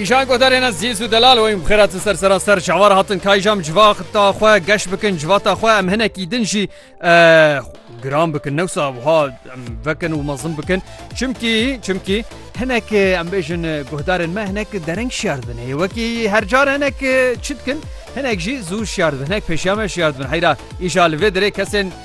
Kîjan ku derê ne zîz û delal weyîn bi xêra ti ser sera ser çavar hatin kayjam civata xwe geş bikin civata xwe em hinekî din jî giran bikin newsa wiha em vekin û mezin bikin çimkî çimkî hinek em bêjin guhdarên me hinek dereng şiyar bin hê wekî her car hinek çi dikin hinek jî zû şiyar bin hinek pêşiya me şiyar bin heyra îja li vê dirê kesên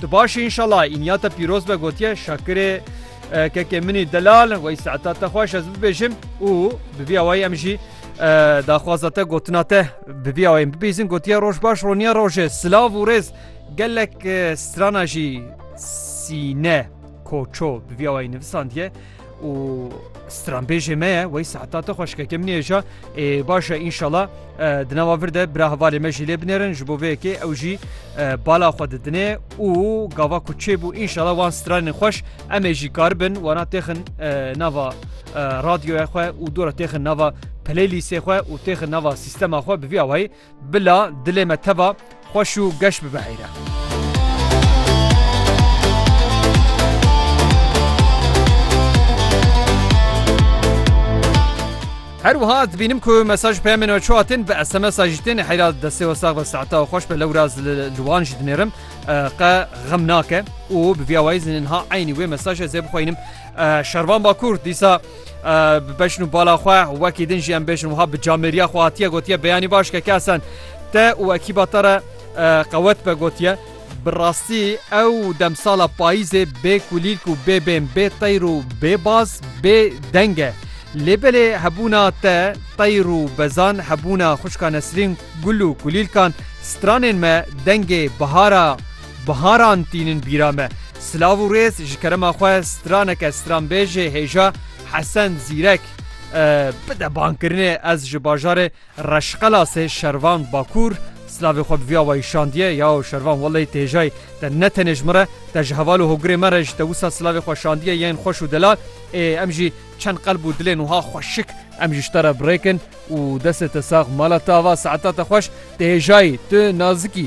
Tu baş î înşala înya te pîroz be gotiye Şakirê Kekê min î delal wey saeta te xweş ez bibêjim û bi vî awayî em jî daxwaza te gotina te bi vî awayî bibîzin gotiye roj baş roniya roje silav û rêz gelek strana jî sîne koço bi vî awayî nivisandiye û stranbêjê me ye wey seheta te xweşkeke min êja ê başe înşala di nava vir de bira hevalê me jî lê binêrin ji bo vê yekê ew jî bala xwe didinê û gava ku çêbû înşala wan stranên xweş em ê jî karibin wana têxin nava radyoya xwe û dora têxin nava playlîsê xwe û têxin nava sîstema xwe bi vî awayî Bila dilê me teva xweş û geş bibiheyre. Her wiha dibînim ku mesaj peyamên we çu hatin bi SMSa jî tên heyra destê we sax ve saeta we xweş be lewra li wan jî dinêrim qe xem nake û bi vîya wayî zinin ha eynî wê mesaj ez ê bixweynim şervan bakur dîsa bi beşn û bala xwe wekî din jî em bêjin wiha bi camêriya xwe hatiye gotiye beyanî baş ke kesen te û ekîba te re qewet be gotiye bi rastî ew demsala payîzê bê kulîlk û bê bên bê teyr û bê baz bê deng e lê belê hebûna te teyr û bezan hebûna xuşka nesrîn Gul û kulîlkan stranên me dengê bihara biharan tînin bîra me. Silav û rêz ji kerema xwe straneke stranbêjê hêja Hesen Zîrek bide bankirinê ez ji bajarê Reşqelasê Şervan Bakur silavê xwe bi vî awayî şandiye yao Şervan welleyî tu hêjayî te ne tenê ji min re te ji heval û hogirê me re ji te wisa silavê xwe şandiye yên xweş û delal ê em jî Çend qelb û dilên wiha xweşik. Em ji te re birêk in û destê te sax mala te ava saetata xweş, tu hêjayî, tu nazikî.